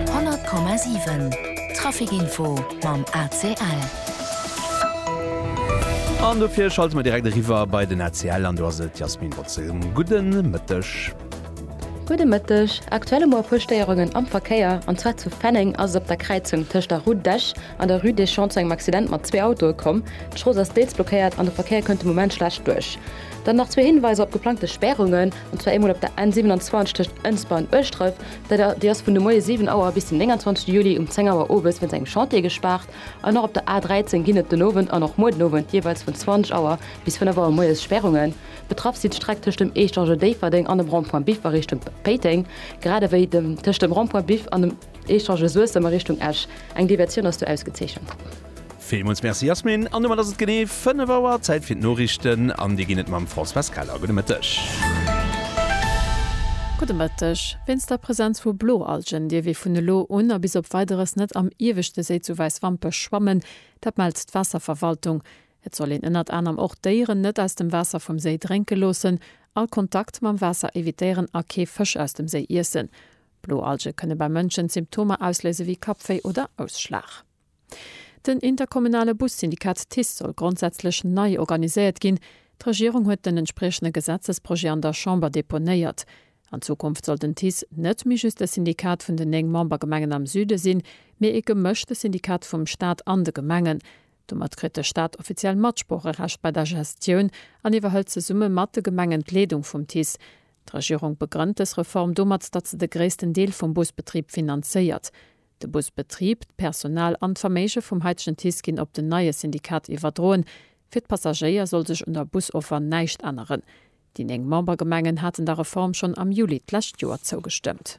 100,7 Trafic Info mam ACL. An dofir schalte mer direkt eriwwer bei den ACL an do ass et d'Jasmine Botzel. Gudde Mëtteg. Gudde Mëtteg. Aktuell hu mer e puer Stéierungen am Verkéier. An zwar zu Fenneng ass et op der Kräizung tëscht der Rue d'Esch an der Rue des Champs zu engem Accident mat zwee Autoe komm. D'Strooss ass deels blockéiert an de Verkéier kënnt de Moment schlecht duerch. Dann nach zwee Hinweiser op geplangte Spärungen. an zwar eemol op der N 27 tëscht Ënsber an Ueschdref, déi ass vun de Moie 7 Auer bis den 29 Juli um 10 Auer owes wéinst engem Chantier gespaart an och op der A 13 ginn et den Owend an och muer den Owend jeeweils vun 20 Auer bis 5 Auer moies Spärrungen. Betraff si d'Streck tëscht dem Eechtange Déifferdeng an dem Rond-point Biff a Richtung Péiteng, grad ewéi tëscht dem Rond-point Biff an dem. Echange Suessem a Richtung Esch. Eng Diversioun ass do ausgezeechent. Villmools Merci Yasmine. An domat ass et genee 5 Auer. Zäit fir d'Noriichten an déi ginn et mam Françoise Keller. Gudde Mëtteg. Gudde Mëtteg. Wéinst der Presenz vu Bloalgen dierf ee vun elo un a bis op Weideres net am ieweschte Séi zu Wäiswampech schwammen. Dat mellt d'Waasserverwaltung. Et soll een ënnert anerem och d'Déieren net aus dem Waasser vum Séi drénke loossen, all Kontakt mam Waasser evitéieren a kee Fësch aus dem Séi iessen. Blo Alge kënne bei Mënschen Symptomer ausléise wéi Kappwéi oder Ausschlag. Den interkommunale Bussyndikat TICE soll grondsätzlech nei organiséiert ginn. D'Regierung huet den entspriechende Gesetzesprojet an der Chamber deponéiert. An Zukunft soll den TICE net méi just e Syndikat vun den néng Membergemengen am Süde sinn, mee ee gemëschte Syndikat vum Staat an de Gemengen. Domat kritt de Staat offiziell Matsproocherecht bei der Gestioun an iwwerhëlt zesumme mat de Gemengen d'Leedung vum TICE. D'Regierung begrënnt dës Reform domat, datt se de gréissten Deel vum Busbetrib finanzéiert. De Busbetrib, d'Personal an d'Verméige vum haitegen TICE ginn op den neie Syndikat iwwerdroen. Fir d'Passagéier soll sech un der Busoffer näischt änneren. Déi néng Membergemengen haten der Reform schonn am Juli d'lescht Joer zougestëmmt.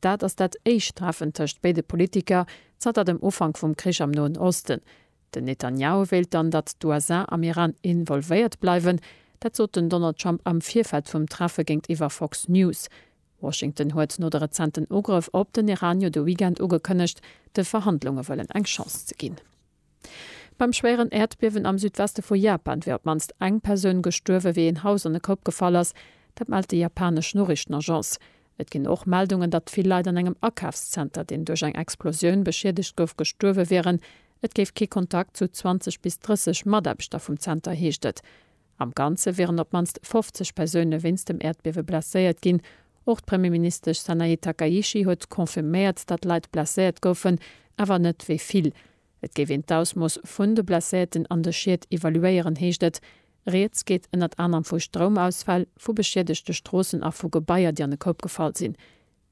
Dat ass dat éischt Treffen tëscht béide Politiker zanter dem Ufank vum Krich am Noen Osten. Den Netanjahu wéilt dann, datt d'USA am Iran involvéiert bleiwen. Dat sot den Donald Trump am Virfeld vum Treffe géintiwwer Fox News. Washington huet no de rezenten Ugrëff op den Iran jo de Weekend ugekënnegt, de Verhandlunge wëllen eng Chance ze ginn. Beim schwéieren Äerdbiewen am Südweste vu Japan wier op d'mannst eng Persoun gestuerwen, wéi een Haus an de Koup gefall ass. Dat mellt déi japanesch Noriichtenagence. Et ginn och Meldungen, datt vill Leit an engem Akafszenter, deen duerch eng Explosioun beschiedegt gouf, gestuerwe wieren. Et géif kee Kontakt zu 20 bis 30 Mataarbechter vum Zenter, heescht et. Am Ganze wieren op d'mannst 50 Persoune wéinst dem Äerdbiewe blesséiert ginn. Och d'Premierministesch Sanae Takaichi huet confirméiert, datt Leit blesséiert goufen, awer net wéi vill. Et géif een d'Ausmooss vun de Blesséierten an de Schied evaluéieren, heescht et. Rieds geet ënnert anerem vu Stroumausfäll, vu beschiedegte Stroossen a vu Gebaier, déi an de Koup gefall sinn.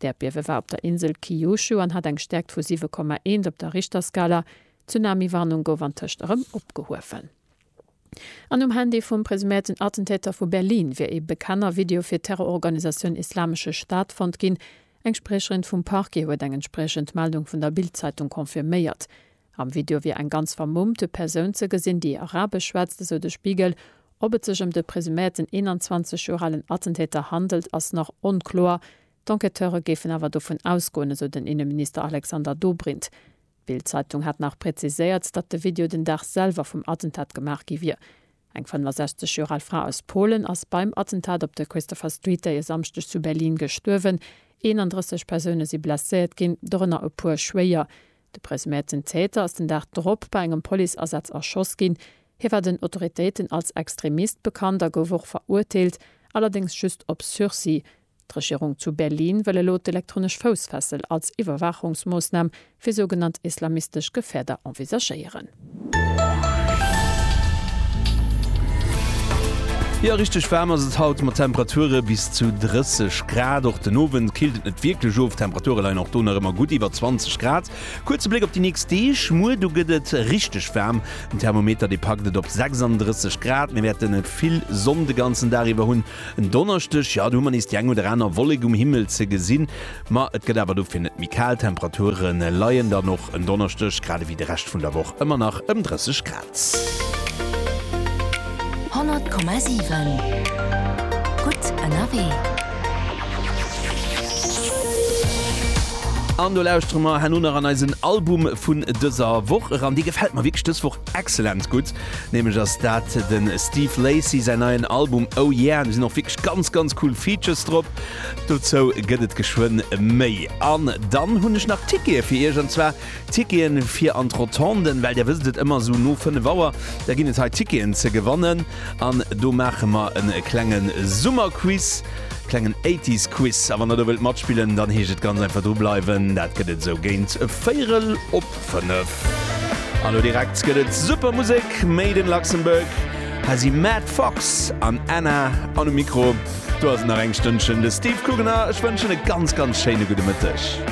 D'Äerdbiewe war op der Insel Kyushu an hat eng Stäerkt vu 7,1 op der Richterskala. D'Tsunami-Warnung gouf antëscht erëm opgehuewen. An um Handy vum presuméierten Attentäter vu Berlin wier ee bekannter Video fir d'Terrororganisatioun Islamesche Staat fonnt ginn. Eng Spriecherin vum Parquet huet eng entspriechend Meldung vun der Bild-Zeitung confirméiert. Am Video wier eng ganz vermummt Persoun ze gesinn, déi Arabesch schwätzt, esou de Spiegel. Ob et sech ëm de presuméierten 21 Joer alen Attentäter handelt, ass nach onkloer. D'Enquêteure géifen awer dovun ausgoen, esou den Inneminister Alexander Dobrindt. D'Bild-Zeitung hat nach präziséiert, datt de Video den Dag selwer vum Attentat gemaach gi wier. Eng 65 Joer al Fra aus Polen ass beim Attentat op der Christopher Street Day e Samschdeg zu Berlin gestuerwen. 31 Persoune si blesséiert ginn, dorënner e puer schwéier. De presuméierten Täter ass den Dag drop bei engem Policeasaz erschoss ginn. Hie war den Autoritéiten als Extremist bekannt a gouf och verurteelt, allerdéngs just op Sursis. D'Regierung zu Berlin wëll elo d'elektronesch Foussfessel als Iwwerwaachungsmoossnam fir sougenannt islamistesch Gefäerder envisagéieren. Jo, richteg waarm ass et haut mat Temperature bis zu 30 Grad. Och den Owend killt et net wierklech of, d'Temperature leien och do nach ëmmer gutt iwwer 20 Grad. Kuerze Bléck op déi nächst Deeg, Muer do gëtt et richteg waarm, den Thermometer dee packt et op 36 Grad. Mir wäerten vill Sonn de ganzen Dag iwwer hunn. En Donneschdeg, jo, do hu mer nees déi eng oder aner Wollek um Himmel ze gesinn. Ma et gëtt awer dofir net méi kal, d'Temperature leien dann och en Donneschdeg, grad ewéi de Rescht vun der Woch, ëmmer nach ëm 30 Grad. 100,7 gutt ënnerwee. An do lauschtere mer herno nach an eisen Album vun dëser Woch eran. Dee gefält mer wierklech dës Woch exzellent gutt, nämlech ass dat de Steve Lacy säin neien Album Oh Yeah. Do sinn och wierklech ganz, ganz cool Features drop. Dozou gëtt et geschwënn méi. An dann hunn ech nach Tickete fir iech, an zwar Ticketen fir an d'Rotonde, well der wësst et, ëmmer esou no 5 Auer, da ginn et hei Ticketen ze gewannen. An do maache mer en klenge Summerquiz, klengen Eighties Quiz. A wann der do wëllt matspillen, dann heescht et ganz einfach dru bleiwen. Dat gëtt et esou géint véierel op. 5. An lo direkt gëtt et super Musek, made in Luxembourg. Hei si Matt Fox an Anna. An um Mikro do ass et nach eng Stënnchen de Steve Kugener. Ech wënschen e ganz, ganz schéine gudde Mëtteg.